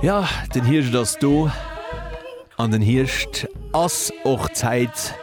Ja den Hierscht ass do an den Hierscht ass och d'Zäit,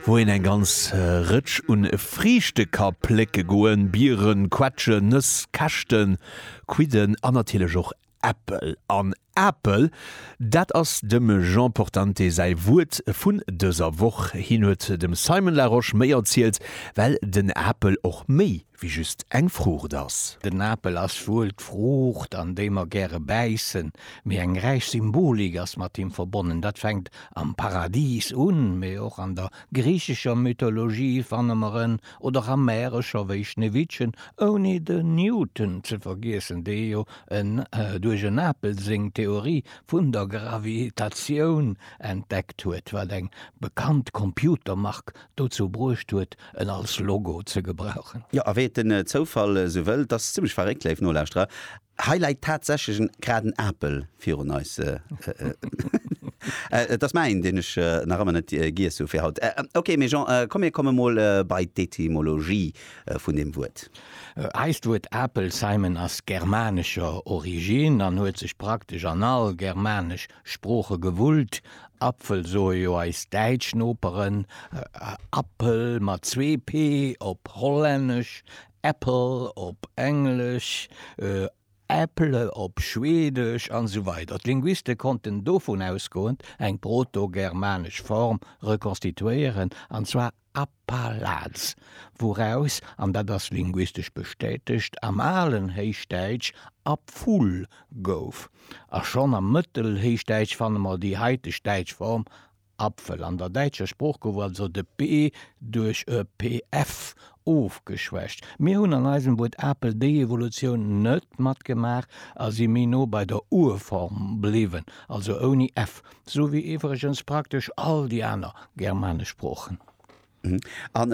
wou een eng ganz Rëtsch un Friichte ka plécke goen, Bieren, Quetschen, Nëss, Käschten, Quidden an natierlech och Äppel. An Apel, dat ass dem Jean Portante säi Wuert vun dëser Woch. Hien huet dem Simon Larosche méi erzielt, well den Apel och méi wéi just eng Fruucht ass. Den Apel ass wuel d'Fruucht, an déi mer gäre bäissen, mee eng räich Symbolik ass mat him verbonnen. Dat fänkt am Paradis un, mee och an der griichescher Mythologie fanne mer en, oder och a Märecher wéi Schneewittchen, ouni de Newton ze vergiessen, dee jo en duerch en Apel seng Theorie vun der Gravitatioun entdeckt huet, wat eng bekannt Computermark dozou bruecht huet, en als Logo ze gebrauchen. Jo, a wéi et den Zoufall esou wëllt, ass zimmlech verréckt, léif Nolauschterer, hei läit tatsächlech en graden Apel virun eis. Et ass mäin, deen ech nach ëmmer net giess hu fir haut. Ok, mee Jean, komm mir komme mol bei d'Etymologie vun deem Wuert. Eist Wuert Apel, Simon, ass germanescher Origine an huet sech praktesch an all germanesch Sprooche gewullt, Apfel soe jo eis däitsch Noperen, Appel mat zwee p op Hollännesch, Apple op Englesch, Äpple op Schweedesch an esou weider D'Linguiste konnten dovun ausgoend eng protogermanesch Form rekonstituéieren, an zwar Appalaz, wouraus, an dat ass linguistesch bestätegt, am alen Héichdäitsch Apful gouf. A schonn am Mëttelhéichdäitsch fanne mer déi haiteg däitsch Form Apfel. An der däitscher Sprooch gouf also de p duerch e pf ofgeschwächt. Mir hunn an eisem Wuert Apel déi Evolutioun net matgemaach a si méi no bei der Urform bliwwen, also ouni f. Sou wéi iwwregens praktesch all déi aner germanesch Sproochen. A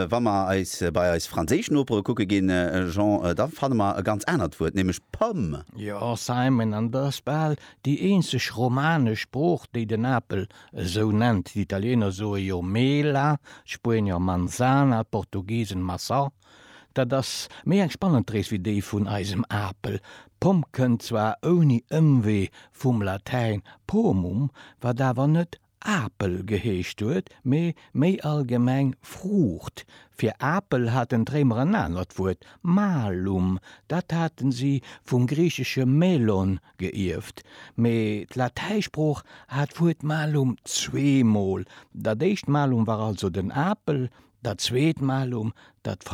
wa mer eis bei eis franséisch Nopere kucke ginn, Jean, da fanne mer e ganz anert Wuert, nämlech pomme. Jo, Simon, an et ass bal déi eenzeg romanesch Sprooch, déi den Apel esou nennt. D'Italiener soe jo mela, d'Spuenier manzana, d'Portugisen maçã, Dat ass méi eng spannend Rees wéi déi vun eisem Apel. Pomm kënnt zwar ouni Ëmwee vum Latäin pomum, wat awer net Apel geheescht huet, mee méi allgemeng Fruucht. Fir Apel haten d'Réimer en anert Wuert, malum, dat hate si vum griichesche melon geierft. Mee d'Latäisprooch hat d'Wuert malum zweemol, dat éischt malum war also den Apel, Dat zweet malum, dat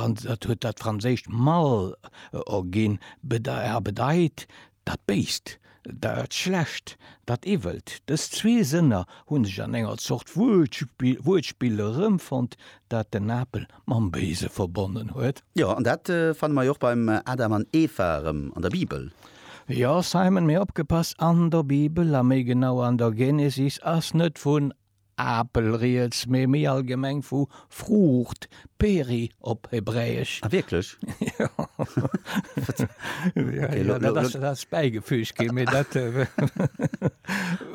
huet dat franséischt mal erginn a bedeit dat Béist, dat Schlecht, dat Iwwelt. Dës zwee Sënner hu sech an enger Zort Wuertspill erëmfonnt, dat den Apel mam Béise verbonnen huet. Jo, an dat fanne mer jo och beim Adam an Eva erëm an der Bibel. Jo, Simon, mee opgepasst, an der Bibel, a méi genau an der Genesis, ass net vun Apel riets, mee méi allgemeng vu Fruucht, peri op Hebräesch. Ah wierklech? Jo. Jo, jo, dat ass, dat ass bäigefüügt ginn, mee dat,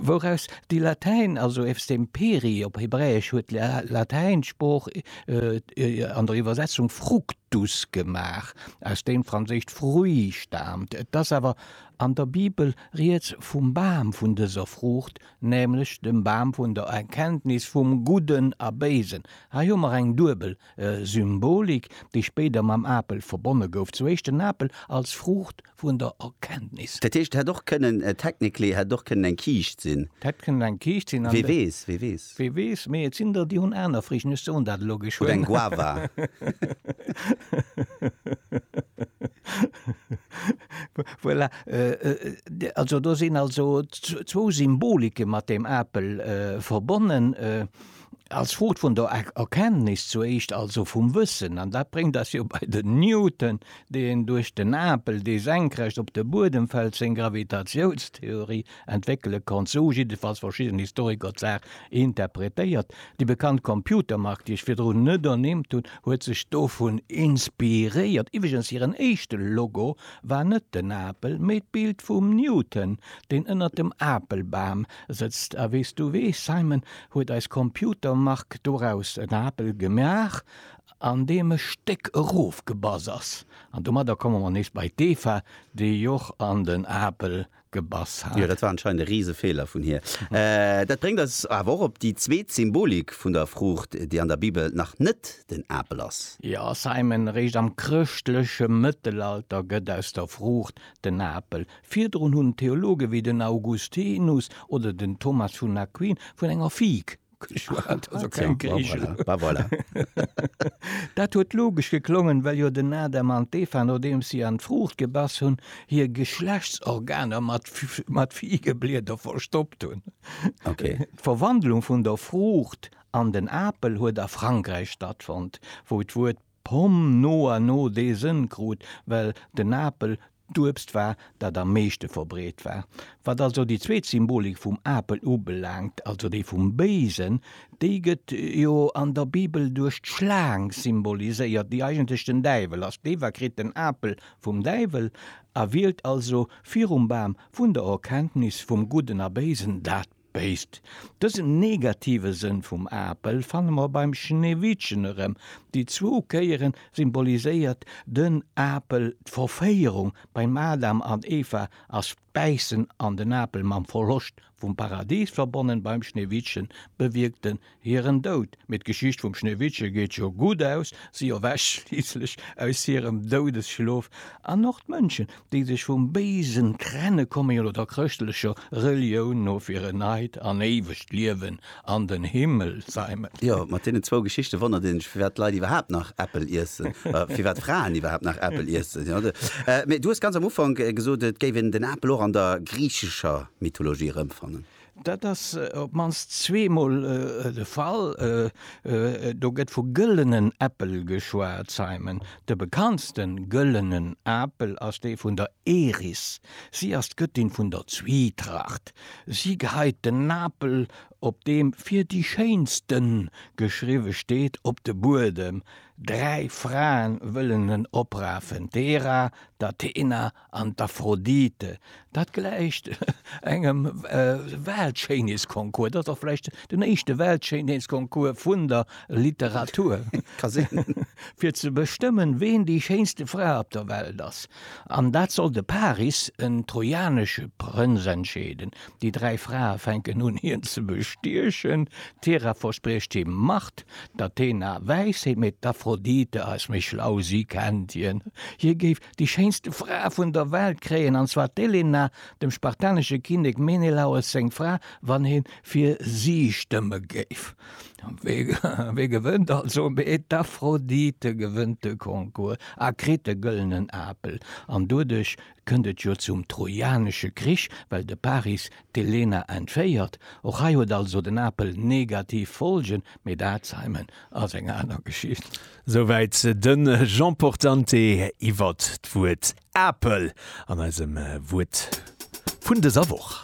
wouraus déi Latäin, also eefst dem peri op Hebräesch, huet d'Latäinsprooch an der Iwwersetzung fructus gemaach, aus deem d'franséischt fruit staamt. Et ass awer an der Bibel riets vum Bam vun dëser Fruucht, nämlech dem Bam vun der Erkenntnis vum Gudden a Béisen. Hei hu mer eng duebel Symbolik, déi spéider mam Apel verbonne gouf, zu éischt den Apel als Fruucht vun der Erkenntnis. Dat heescht, et hätt och kënnen, technically hätt et och kënnen eng Kiischt sinn. Et hätt kënnen eng Kiischt sinn. Wee weess, wee weess. Wee weess, mee et sinn der, déi hunn aner Friichten, ech soen dat elo geschwënn. Oder eng Guava. Voilà, also do sinn also zwou Symbolike mat deem Apel verbonnen, als Frucht vun der Erkenntnis zu éischt, also vum Wëssen. An dat bréngt eis jo bei den Newton, deen duerch den Apel, dee senkrecht op de Buedem fält, seng Gravitatiounstheorie entwéckele konnt. Sou hu jiddefalls verschidden Historiker d'Saach interpretéiert. Déi bekannt Computermark, déi ech virdrun net ernimmt hunn, huet sech dovun inspiréiert. Iwwregens hiren éischte Logo War net den Apel, mee d'Bild vum Newton, deen ënnert dem Apelbam sëtzt. A wéi s du weess, Simon, huet eis Computermark doraus en Apel gemaach, an deem e Stéck erofgebass ass. An domadder komme mer nees bei d'Eva, déi och an den Apel gebass hat. Jo, dat war anscheinend e riise Feeler vun hir. Dat bréngt eis awer och op déi zweet Symbolik vun der Fruucht, déi an der Bibel nach net den Apel ass. Jo, Simon, eréischt am chrëschtleche Mëttelalter gëtt aus der Fruucht den Apel. Virdrun hunn Theologe wéi den Augustinus oder den Thomas vun Aquin vun enger Fig Dat huet logesch geklongen, well jo den Adam an d'Eva, nodeems si an d'Fruucht gebass hunn, hir Geschlechtsorganer mat Figeblieder verstoppt hunn. D'Verwandlung vun der Fruucht an den Apel huet a Frankräich stattfonnt, wou d'Wuert Pomm no a no dee Sënn krut, well den Apel d'Uebst war, dat am meeschte verbreet war. Wat also déi zweet Symbolik vum Apel ubelaangt, also déi vum Béisen, déi gëtt jo an der Bibel duerch d'Schlaang symboliséiert, déi eigentlech den Däiwel ass. D'Eva kritt den Apel vum Däiwel a wielt also virum Bam vun der Erkenntnis vum Gudden a Béisen dat Béisst. Dësen negative Sënn vum Apel fanne mer beim Schneewittchen erëm. Déi zwou Kéiere symboliséiert den Apel d'Verféierung beim Adam an Eva ass d'Bäissen an den Apel mam Verloscht vum Paradis verbonnen, beim Schneewittchen bewierkt en Hiren Doud, mee d'Geschicht vum Schneewittche geet jo gutt aus, si erwächt schliisslech aus hirem Doudesschlof, an och d'Mënschen, déi sech vum Béisen trenne komme jo lo der chrëschtlecher Relioun no fir en neit an éiwegt Liewen an den Himmel ze heimen. Jo, mat deenen zwou Geschichte wonnert een sech, firwat d'Leit iwwerhaapt nach Äppel iessen, firwat Fraen iwwerhaapt nach Äppel iessen. Mee du hues ganz am Ufank gesot, et géif een den Apel och an der griichescher Mythologie erëmfannen. Dat ass op d'mannst zweemol de Fall. Do gëtt vu gëllenen Äppel geschwat, Simon. De bekanntste gëllenen Apel ass dee vun der Eris. Si ass d'Gëttin vun der Zwietracht. Si geheit den Apel, op deem fir déi schéinste geschriwwe steet, op de Buedem. Dräi Frae wëllen en oprafen, d'Hera, d'Athena An d'Aphrodite, dat gläicht engem Weltschéinheetsconcours. Dat ass och vläicht den éischte Weltschéinheetsconcours vun der Literatur. Ka sinn. Fir ze bestëmmen, ween déi schéinste Fra op der Welt ass. An dat soll de Paris, en trojanesche Prënz, entscheeden. Déi dräi Frae fänken un, hien ze bestiechen. D'Hera verspriecht him Macht, d'Athena Wäisheet, mee d'Aphrodite ass méi schlau, si kennt hien. Hie géif Déi schéinste Fra vun der Welt kréien, an zwar d'Elena, dem spartanesche Kinnek Menelaos seng Fra, wann ee fir si stëmme géif. Wee gewënnt also? Mee d'Aphrodite gewënnt de Concours a kritt de gëllenen Apel. An doduerch kënnt et jo zum Trojanesche Krich, well de Paris D'Elena entféiert. Och hei huet also den Apel negativ Folgen, mee dat, Simon, ass eng aner Geschicht. Souwäit de Jean Portante iwwer d'Wuert Apel an eisem Wuert vun dëser Woch.